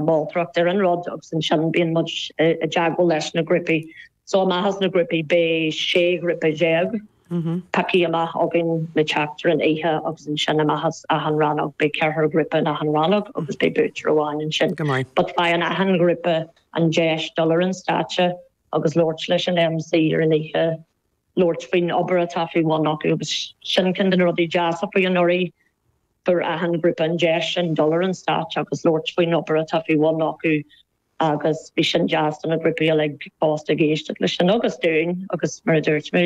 Moltóireacht ar an rud agus ansin bíonn muid i dteagmháil leis na grúpaí. So amach as na grúpaí beidh sé ghrúpa dhéag pioctha amach againn le teacht ar an oíche agus ansin amach as achan rannóg beidh ceathrar grúpa in achan rannóg agus beidh buaiteoir amháin ansin. But faigheann achan ghrúpa an deis dul ar an stáitse agus labhairt leis an MC ar an oíche, labhairt faoin obair atá faoi bhun acu agus sin ceann de na rudaí deasa faoi anuraidh Fuair achan ghrúpa an deis sin dul ar an stáitse agus labhairt faoin obair atá faoi bhun acu agus bhí sin deas do na grúpaí uilig fosta ag éisteacht leis sin agus dúinn agus mar a dúirt mé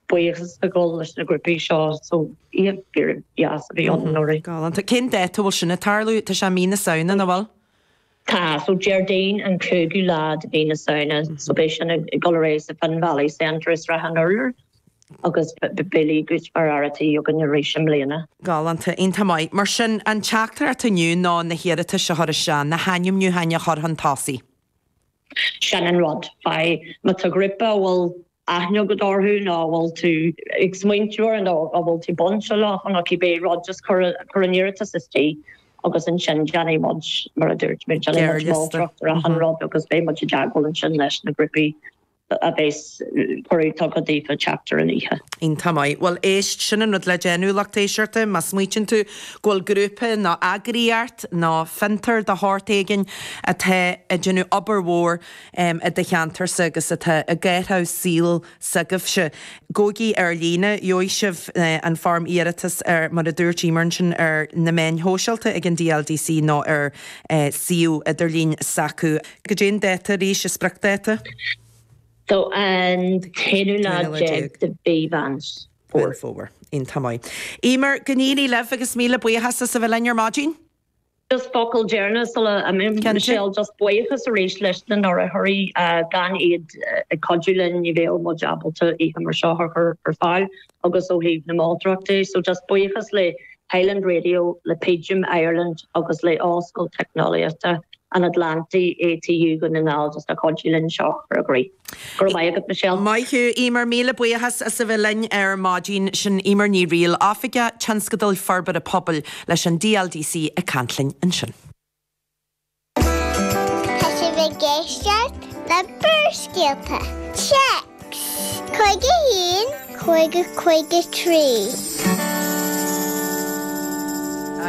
buíochas a gabháil leis na grúpaí seo so oíche fíordheas a bhí ann anuraidh. Galánta. Cén dáta a bhfuil sin ag tarlú? Tá sé i mí na Samhna, an bhfuil? Tá so Déardaoin an cúigiú lá de mhí na Samhna so beidh sin ag dul ar aghaidh sa Finn Valley Centre i Srath an Urláir agus beidh Billy Goat mar fhear a tí againn arís i mbliana. Galánta, iontach maith. Mar sin, an teachtaireacht atá inniu ná na hiarratais a chur isteach, na hainmniúcháin a chur chun tosaigh. Sin an rud. Faigh, má tá grúpa a bhfuil aithne agat orthu ná a bhfuil tú ag smaointiú air nó a bhfuil tú bainte leo chun aici beidh rud is cur cur an iarratas istigh agus ansin déanfaidh muid mar a dúirt mé déanfaidh muid moltóireacht ar achan rud agus beidh muid i dteagmháil ansin leis na grúpaí a bheas cuireadh tugtha daofa theacht ar an oíche. Iontach maith. Bhuel éist, sin an rud le déanamh, lucht éisteachta, má smaoitíonn tú go bhfuil grúpa ná eagraíocht ná fiontar de shórt éigin atá ag déanamh obair mhór, i do cheantarsa agus atá i gcathraibh saoil s'agaibhse, gabhaigí ar líne, gheobhaidh sibh an fhoirm iarratais ar, mar a dúirt Emer ansin, ar na meáin shóisialta ag an DLDC nó ar suíomh idirlín s'acu. Goidé an dáta arís, an spriocdáta? Tá an t-aonú lá déag de mhí Mheán Fómhair. Fómhair. Iontach maith. Emer, go n-éirí libh agus míle buíochas as a bheith linn ar maidin. Just focal deireanach sula imíonn Michelle, just buíochas arís leis na hurraitheoirí, gan iad ag cuidiú linn ní bheadh muid ábalta oíche mar seo a chur ar fáil agus ó thaobh na moltóireacht de, so just buíochas le Highland Radio, le Pidgin Ireland agus le Ollscoil Teicneolaíochta an Atlantaigh, ATU, Dhún na nGall just as cuidiú linn seo a chur i gcrích. Go raibh maith agat Michelle. Maith thú Emer, míle buíochas as a bheith linn ar maidin sin Emer Ní Riail, Oifigeach Tionscadail Forbartha Pobail leis an DLDC ag caint linn ansin. Tá sibh ag éisteacht le Barrscéalta, Téacs 51. Cúig a cúig a trí.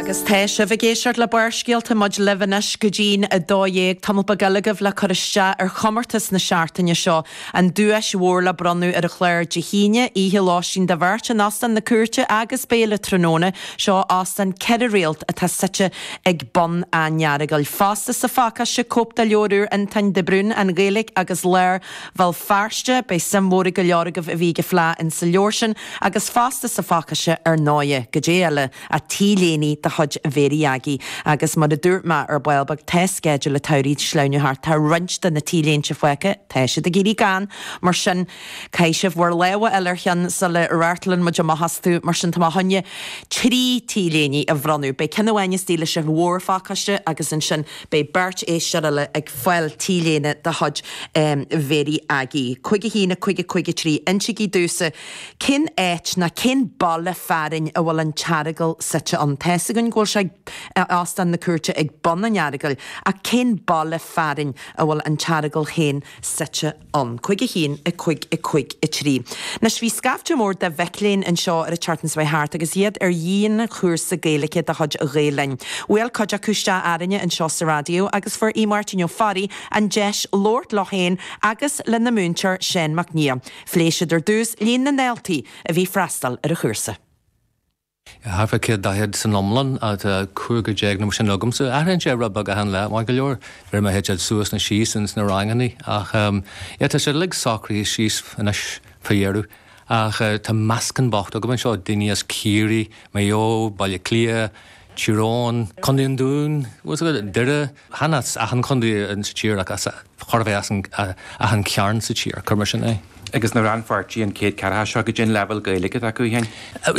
Agus tá sibh ag éisteacht le Barrscéalta, muid libh anois go dtí'n 12:00, tamall beag eile agaibh le cur isteach ar chomórtas na seachtaine seo, an duais mhór le bronnadh ar an chlár Dé hAoine, oíche lóistín do bheirt in Óstán na Cúirte agus béile tráthnóna, seo óstán ceithre réalt atá suite ag bun an Earagail. Fosta sa phacáiste, cóip de leabhar úr Fhionntáin de Brún, An Ghaeilge agus Lár, Bhéal Feirste, beidh suim mhór ag go leor agaibh a bhí ag fleá insa leabhar sin agus fosta sa Phacáiste ar ndóighe, caidé eile, ach t-léine de chuid Mhéirí Aggie. Agus mar a dúirt mé ar ball beag tá sceideal an tsamhraidh ag sleamhnú thart, tá roinnt de na t-léinte faighte, tá siad ag éirí gann, mar sin, caithfidh sibh bhur lámha a fháil ar cheann sula reathann muid amach astu, mar sin, tá mé chun trí t-léine a bhronnadh, beidh ceann amháin istigh leis an mhórphacáiste agus ansin, Beidh beirt éisteoir eile ag fáil t-léine de chuid Mhéirí Aggie. Cúig a haon a cúig a cúig a trí. Insigí domhsa cén áit ná cén baile fearainn a bhfuil an tEaragal suite ann. Tá's againn go bhfuil sé ag Óstán na Cúirte ag bun an Earagail ach cén baile fearainn a bhfuil an tEaragal féin suite ann. Cúig a haon, a cúig, a cúig a trí. Anois, bhí scaifte mór de mhic léinn anseo ar an tseachtain seo thart agus iad ar dhianchúrsa Gaeilge de chuid Ghael Linn. Bhuail cuid acu isteach orainne anseo sa Raidió agus fuair Aodh Máirtín Ó Fearraigh an deis labhairt leo féin agus lena múinteoir Seán Mac Nia. Phléigh siad ar dtús líon na ndaltaí a bhí ag freastal ar an chúrsa. Thart fá 100 daichead san iomlán, tá 15 nó mar sin agamsa. Athraíonn sé rud beag achan lá, mar go leor uair má théann siad suas nó síos ins na ranganna. Ach yeah, tá sé uilig socraithe síos anois fá dheireadh. Ach tá meascán bocht agam anseo, daoine as Ciarraí, Maigh Eo, Baile Átha Cliath, Tír Eoghain, Co. an Dúin, Doire, chan as achan chondae sa tír ach chóir a bheith achan chearn sa tír, cuir mar sin é. Agus na rannpháirtithe, an céad ceathracha seo, caidé an leibhéal Gaeilge atá acu féin.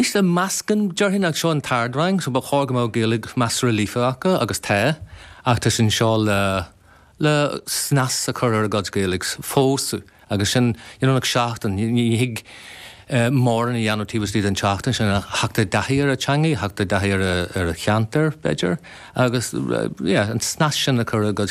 Is é meascán, déarfainn, ach seo an t-ard rang so ba chóir go mbeadh Gaeilge measartha líofa acu agus tá, ach tá siad anseo le le snas a chur ar a gcuid Gaeilge fosta. Agus sin in achar seachtaine. Ní thig mórán a dhéanamh taobh istigh den tseachtain sin ach theacht i dtaithí ar an teangaidh, theacht i dtaithí ar an cheantar, b'fhéidir, agus yeah an snas sin a chur ar a gcuid.